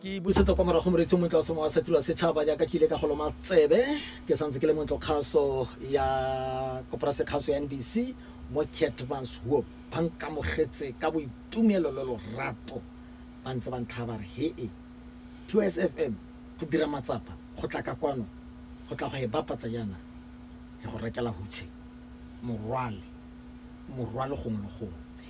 ke busetsa kwa morago moreetsi o montle wa semowa sa tiro ya setšhaba jaaka ke ile ka go loma tsebe ke santse ke le montlo kgaso ya koporase kgaso ya nbc mo catmas huop ba nkamogetse ka boitumelo le lorato ba ntse ba ntlha ba re he e tws fm go dira matsapa go tla ka kwano go tla go e bapatsa jaana ya go rekela hutshe morwale morwale gongwe le gongwe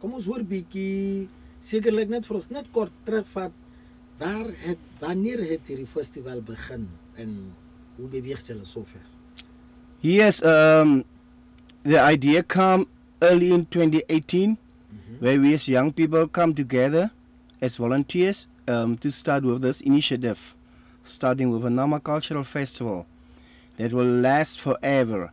Kom ons hoor bietjie sekerlik net vir ons net kort terugvat. Waar het wanneer het hierdie festival begin en hoe beweeg julle sover? Yes, um the idea came early in 2018 mm -hmm. where we as young people come together as volunteers um to start with this initiative starting with a Nama cultural festival that will last forever.